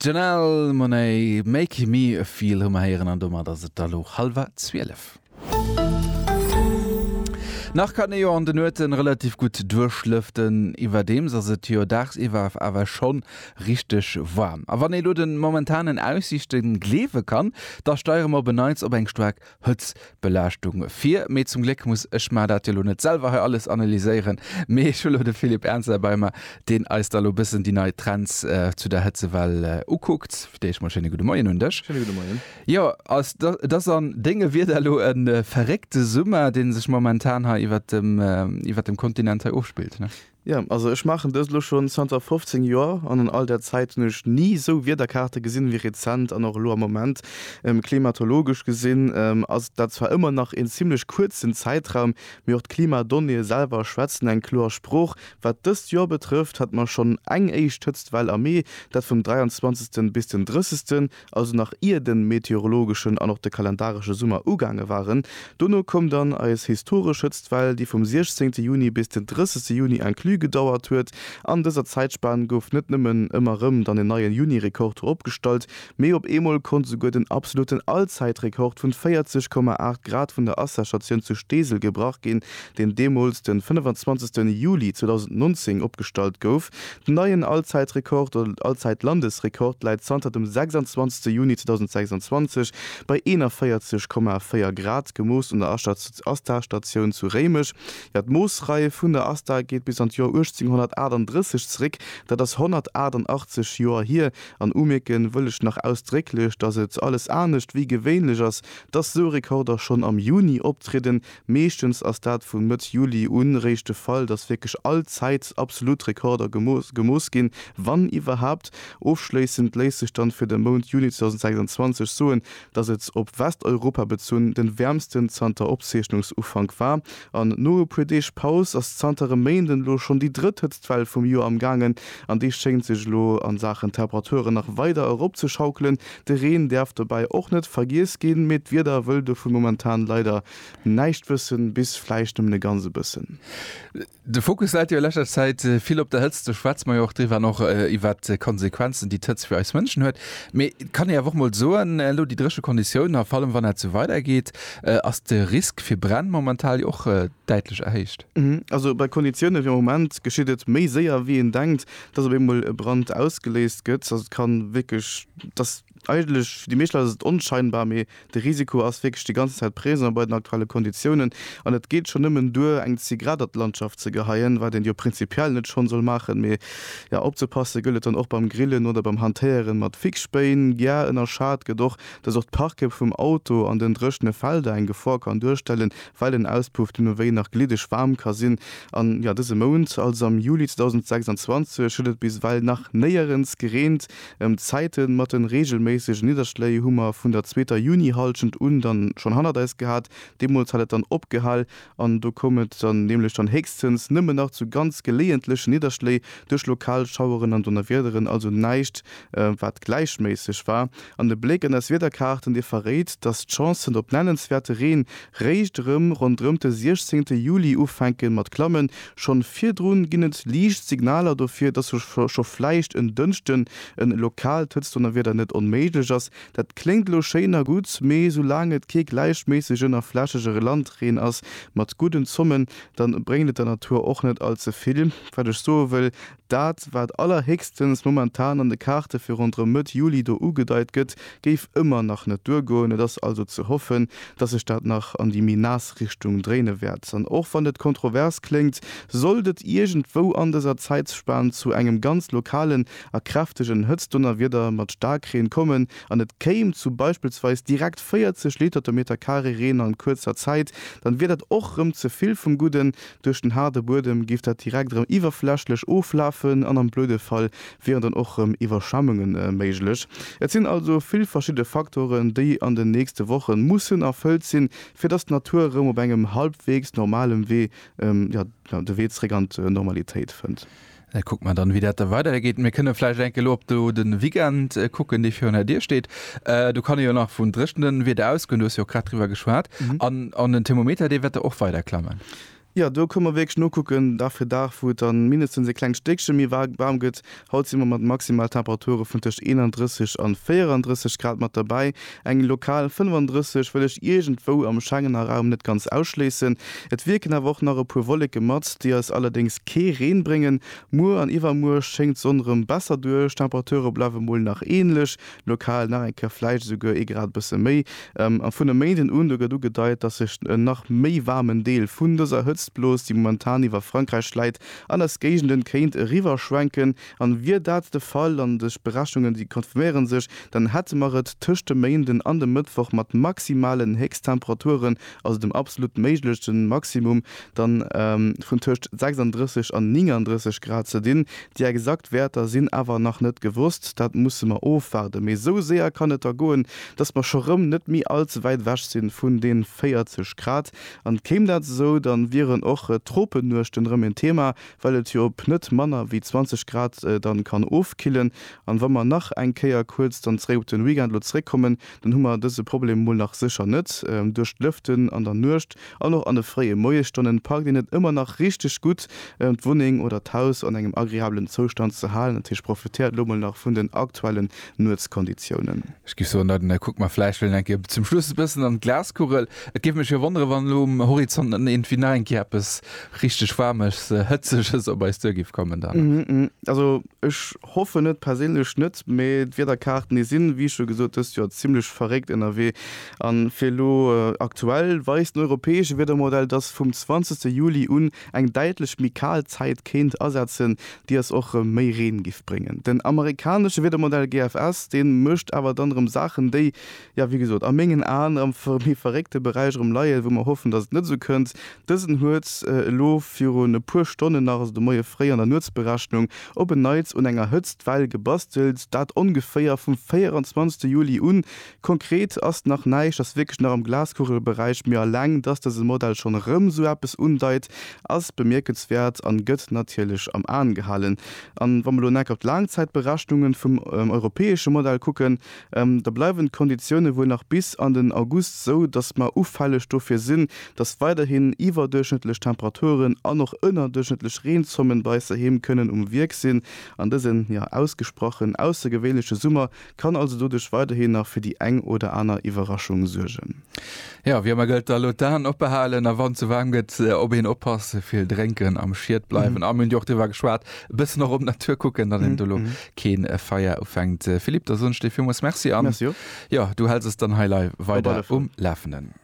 D'Janelle Monáe, Make me feel hu mer héieren an domat ass et da lo hallwer 12. Nach kann ee jo an de Nuete relativ gutt duerchlëften, iwwerdeems ass et jo dagsiwwer awer scho richteg waarm. A wann ee lo de momentanen Aussiichte gleewe kann, da steiere mer op en Neits op eng staark Hëtzbelaaschtung vir. Mee zum Gléck muss ech mar dat jo lo net selwer hei alles analyséieren, mee ech hu lo de Philippe Ernzer herbei mar, deen eis da lo bëssen déi nei Trends zu der Hëtzewell ukuckt. Fir d'éischt mol schéine gudde Moien un dech. Schéine gudde Moien. Jo, als et ass an dénge Wierder lo e verréckte Summer, dee sech momentan hei iwwert dem, iwwert dem Kontinent hei ofspillt, ne? Jo, also ech maachen dëst elo schonn zanter 15 Joer an an all där Zäit hunn ech ni esou Wiederkaarte gesinn ewéi rezent an och elo am Moment. Klimatologesch gesinn ass dat zwar ëmmer nach een zimlech kuerzen Zäitraum, mee och d'Klimadonnéeë selwer schwätzen eng kloer Sprooch. Wat dëst Joer betrëfft, hat mer schonn eng éischt Hëtztwell am Mee, dat vum 23. bis den 30. also nach ier de meteorologeschen an och de kalendaresche Summer ugaange waren. Dono koum dann eis historesch Hëtztwell, déi vum 16 Juni bis den 30 Juni inclus gedauert huet. An dëser Zäitspan gouf net nëmmen ëmmer rëm dann en neien Juni-Rekord ropgestallt, mee op eemol konnt esouguer den absoluten Allzäitrekord vun 40,8 Grad vun der Asserstatioun zu Steesel gebrach ginn, deen deemools den 25 Juli 2019 opgestallt gouf. Den neien Allzäitrekord oder Allzäitlandesrekord läit zanter dem 26 Juni 2026 bei 41,4 Grad, gemooss un der ASTA-Statioun zu Réimech. Jo, d'Moossrei vun der ASTA geet bis an d'Joer 1838 zeréck, dat ass 188 Joer hier. An umierke wëll ech nach ausdrécklech, datt et alles anescht wéi gewéinlech ass, datt sou Rekorder schonn am Juni optrieden, Meeschtens ass dat vu Mëtt Juli un réischt de Fall, dass wierklech all Zäit absolut Rekorder gemooss ginn, wann iwwerhaapt. Ofschléissend léisst sech dann fir de Mount Juni 2026 soen, dass et, op Westeuropa bezunn, den wäermsten zanter Opzeechnungsufank war. An no e puer Deeg Paus ass zanter e Méint elo schonn déi drëtt Hëtztwell vum Joer am gaangen, an déi schéngt sech elo a Saachen Temperaturen nach weider eropzeschaukelen. De Reen däerf dobäi och net vergiess ginn, mee d'Wieder wëll dovun momentan leider näischt wëssen, bis vläicht nëmmen e ganze bëssen. De Fokus läit jo a leschter Zäit vill op der Hëtzt, do schwätze mer jo och driwwer, an och iwwert d'Konsequenzen, déi d'Hëtzt fir eis Mënschen huet. Mee et kann ee awer och mol soen, elo déi dréche Konditiounen, a vallem wann dat esou weidergeet, ass de Risk fir Bränn momentan jo och däitlech erhéicht. Also bei Konditioune wéi am Moment geschitt et méi séier wéi een denkt, dass op eemol e Brand ausgeléist gëtt, dass et ka wierklech, dass eigentlech fir déi meescht Leit ass et onscheinbar, mee de Risiko ass wierklech déi ganz Zäit présent bei den aktuelle Konditiounen. An et geet schonn nëmmen duer, eng Zigarett an d'Landschaft ze geheien, wat een jo prinzipiell net schonn soll maachen, mee jo, opzepasse gëllt et dann och beim Grillen oder beim Hantéieren mat Fixspéin. Gea, ënnerschat gëtt och, dass och d'Parke vum Auto an den dréchene Felder eng Gefor kann duerstellen, well den Auspuff dunn ewéi nach gliddeg waarm ka sinn an jo dëse Mount, also am Juli 2026, huet et bis ewell nach néierens gereent. D'Zäite mat de reegelméissege Nidderschléi hu mer vun der zweeter Junihallschent un dann schonn hannert eis gehat, deemools hat et dann opgehal an do koum et dann nämlech dann héchstens nëmmen nach zu ganz geleeëntlechen Nidderschléi duerch lokal Schaueren an Donnerwiederen, also näischt wat gläichméisseg war. An e Bléck an eis Wiederkaarten, dee verréit, dass d'Chancen op nennenswäerte Reen réischt erëm ronderëmt de 16 Juli ufänke mat klammen. Schonn virdrun ginn et liicht Signaler dofir, dass scho vläicht en Dënschden e lokaalt Hëtztdonnerwieder net onméiglech ass. Dat kléngt elo schéin a gutt, mee soulaang et kee gläichméissegen a flächege Landreen ass mat gudden Zommen, da bréngt et der Natur och net all ze vill. Wat ech soe wëll, Dat, wat allerhéchstens momentan an de Kaarte fir ronderëm Mëtt Juli do ugedeit gëtt, géif ëmmer nach net duergoen. Et ass also ze hoffen, datt sech dat nach an déi méi naass Richtung dréine wäert. An och wann et kontrovers kléngt, sollt et iergendwou an dëser Zäitspan zu engem ganz lokalen a kräftegen Hëtztdonnerwieder mat Staarkreen kommen an et kéim zu beispillsweis direkt 40 Liter de Meterkaree Reen an kuerzer Zäit, dann wier dat och rëm ze vill vum Gudden, Duerch den haarde Buedem géif dat direkt erëm iwwerflächlech oflafen an am blöde Fall wieren dann och erëm Iwwerschwemmunge méiglech. Et sinn also vill verschidde Faktoren, déi an den nächste Woche mussen erfëllt sinn, fir datt d'Natur erëm op engem halbweegs normalem Wee de Wee zeréck an d'Normalitéit fënnt. Da kucke mer dann, wéi dat da weidergeet. Mir kënne vläicht eng Kéier elo op do de Weekend kucken, dee virun der Dier steet. Do kann ee jo nach vun dréchnem Wieder ausgoen, du hues jo och grad driwwer geschwat. An den Thermometer, dee wäert da och weider klammen? Jo, do kënne mer wierklech nokucken, Dag fir Dag, wou et dann mindestens e klengt Stéckche méi waarm gëtt. Haut si mer mat Maximaltemperature vun tëscht 31 an 34 Grad mat derbäi. Eng lokal 35 wëll ech iergendwou am Schengener Raum net ganz ausschléissen. Et wierken awer och nach e puer Wolleke mat, déi eis allerdéngs kee Reen bréngen. Muer an iwwermuer schéngt d'Sonn erëm besser duerch, d'Temperature bleiwe mol nach änlech, lokal nach eng Kéier vläicht esouguer ee Grad bësse méi. A vun e Méinden un, do gëtt ugedeit, dass sech en nach méi waarmen Deel vun dëser Hëtztblos, déi momentan iwwer Frankräich läit, an eis Géigenden kéint eriwwerschwenken. An wier dat de Fall, an dës Berechnungen déi confirméieren sech, dann hätte mer et tëscht dem Méinden an dem Mëttwoch mat maximalen Héchsttemperaturen, also dem absolut méiglechte Maximum, dann vun tëscht 36 an 39 Grad ze dinn. Déi exakt Wäerter sinn awer nach net gewosst, dat musse mer ofwaarden. Mee sou séier kann et da goen, dass mer scho rëm net méi all ze wäit ewech sinn vun den 40 Grad. An kéim dat esou, dann wieren och Tropennuechten rëm en Thema, well et jo op net manner wéi 20 Grad dann kann ofkillen, an wa mer nach eng Kéier kuerz dann zeréck op den Weekend elo zeréckkommen, dann hu mer dëse Problem mol nach sécher net. Duerch d'Lëften an der Nuecht an och an de fréie Moiesstonnen packt een et ëmmer nach richteg gutt d'Wunneng oder d'Haus an engem agreablen Zoustand ze halen. Dat heescht, profitéiert elo mol nach vun den aktuellen Nuetskonditiounen. Ech géif soen, Leiden, da kucke mer vläicht wëll eng Kéier zum Schluss e bëssen an d'Glaskugel. Et géif mech jo wonneren, wann elo um Horizont net iergendwéi nach eng Kéier eppes richteg Waarmes, Hëtzeges op eis duer géif kommen dann. Also ech hoffen et perséinlech net, mee d'Wiederkaarten, déi sinn, wéi scho gesot, dëst Joer zimmlech verréckt ënnerwee. A fir elo, aktuell weist den europäesche Wiedermodell, dass vum 20. Juli un Eng däitlech méi kal Zäit kéint asetzen, déi ass och rem méi Reen giff bréngen. Den amerikanesche Wiedermodell GFS, deen mécht awer dann rem Saachen déi, jo wéi gesot, a méngen Aen am méi verréckte Beräich rem leien, wou mer hoffen dass et net esou kënnt. Dësen huet elo virun e puer Stonnen nach, also de Moie fréi an der Nuetsberechnung, op en Neits un enger Hëtztwell gebastelt, dat ongeféier vum 24 Juli un Konkret ass nach näischt, ass wierklech nach am Glaskugelberäich, mee alleng dass dëse Modell schonn erëm esou eppes undeit, ass bemierkenswäert an gëtt natierlech am Aen gehalen. An wa mer elo en Eck op d'Laangzäitberechnungen vum europäesche Modell kucken, da bleiwen d'Konditiounen wuel nach bis an den August esou, dass mer ufälleg dofir sinn, dass weiderhin iwwerduerchschnëttlech Temperaturen an och ënnerduerchschnëttlech Reenzommen bei eis doheem kënnen um Wierk sinn an dësen, jo, ausgesprochen aussergewéinleche Summer Kann also doduerch weiderhin nach fir déi eng oder aner Iwwerraschung suergen. Jo, wiermer gëllt, da elo d'Aen oppe halen a wann et ze waarm gëtt, op een oppassen, vill drénken, am Schiet bleiwen a mir hunn jo och driwwer geschwat, e bëssen och op d'Natur kucken, datt een do elo kee Feier ufänkt. Philippe, da soen ech dir villmools Merci an jo, du häls eis dann hei leiw weider um Lafenden.